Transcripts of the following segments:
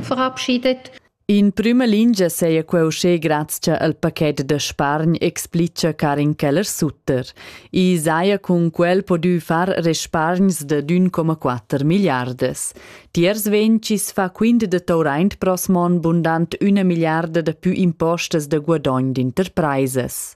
verabschiedet. In prüma lingia seia queu uschè grazcha al paquet da spargn, explicha Karin Keller-Sutter. I saja cun quel podü far respargns da d'1,4 milliardas. Tiers vencis fa quint da Tauraint prosmon bundant üna milliarda da pü impostas da guadogn d'interpraisas.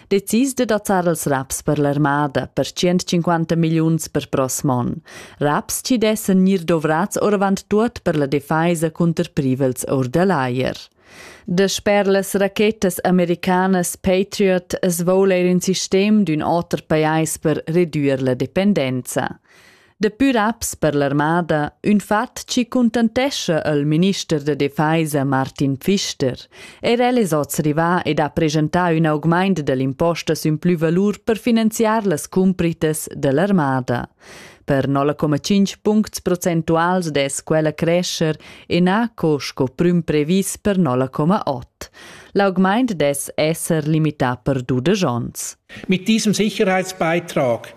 Decis de dazzar els raps per l'armada per 150 milliuns per prossm on. Raps ci dessen gnir dovrats oravant tuot per la defeisa cunter privels or da l'aier. De sper las rachetas americanas Patriot es voul eir in sistem d'ün oter pajais per redüer la dependenza. Daplü raps per l'armada, ün fat chi cuntantescha al minister da defesa Martin Pfister. Er el es hoz rivà ed ha presentà ün augmaint da l'impostas ün plü valur per finanziar las cumpritas da l'armada. Per 0,5 puncts procentuals dess quella crescer ennaco sco prüm previs per 0,8. L'augmaint dess esser limità per dudesch ons. Mit diesem Sicherheitsbeitrag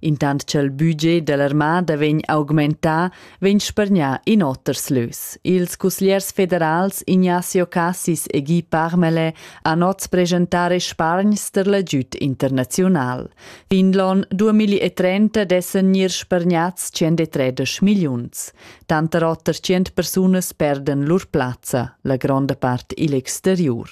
Intant cha'l budget da l'armada vegn augmentà, vegn spargnà in oters lös. Ils cusgliers federals Ignazio Cassis e Guy Parmelais han oz presentare spargns ter l'agüd internaziunal. Finlon 2030 dessan gnir spargnats 103 milliuns. Tanter oter 100 persunas perdan lur plazza, la gronda part igl exteriur.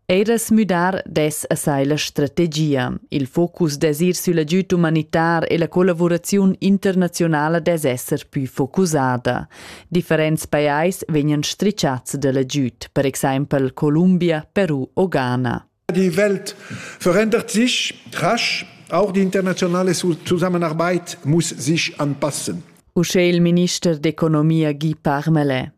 Ei da smüdar dess a sai la strategia. Il focus dess ir sül agüd umanitar e la collavuraziun internazionala dess esser pü focusada. Differents pajais vegnan stricciats da l'agüd, per exempel Columbia, Peru o Ghana. Die Welt verändert sich rasch, auch die internationale Zusammenarbeit muss sich anpassen. Uschè il minister d'economia Guy Parmelin.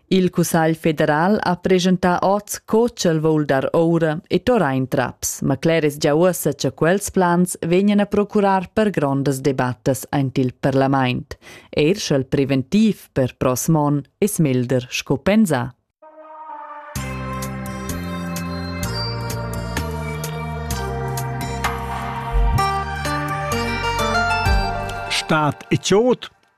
Il Cussagl federal ha presentà oz co ch'el vul dar oura e torrar in traps, ma cler es gia uossa cha quels plans vegnan a procurar per grondas debattas aint il parlamaint. Eir sch'el preventiv per prossm on es melder sco pensà. Staat e Chod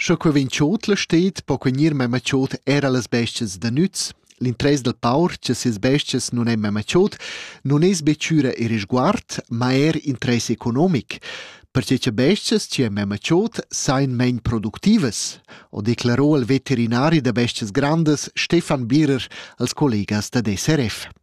Sco che vegn tschut la stad po quei gnir memma tschut era las bestias da nüz. L'interess dal paur cha sias bestias nun ein memma tschut nun es be chüra e risguard, ma eir interess economic, perche cha bestias chi han memma tschut sajan main productivas, ho declaro il veterinari da bestias grandas Stefan Birer als collegas dad SRF.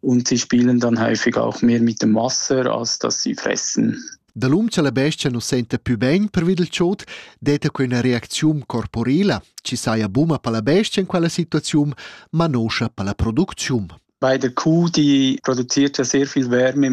Und sie spielen dann häufig auch mehr mit dem Wasser, als dass sie fressen. Da l'um cha la bestia nu senta pü bain pervi dal chod, detta que üna reacziun corporela, chi saja buna per la bestia in quella situaziun, ma noscha per la producziun. Bei der Kuh, die produziert ja sehr viel Wärme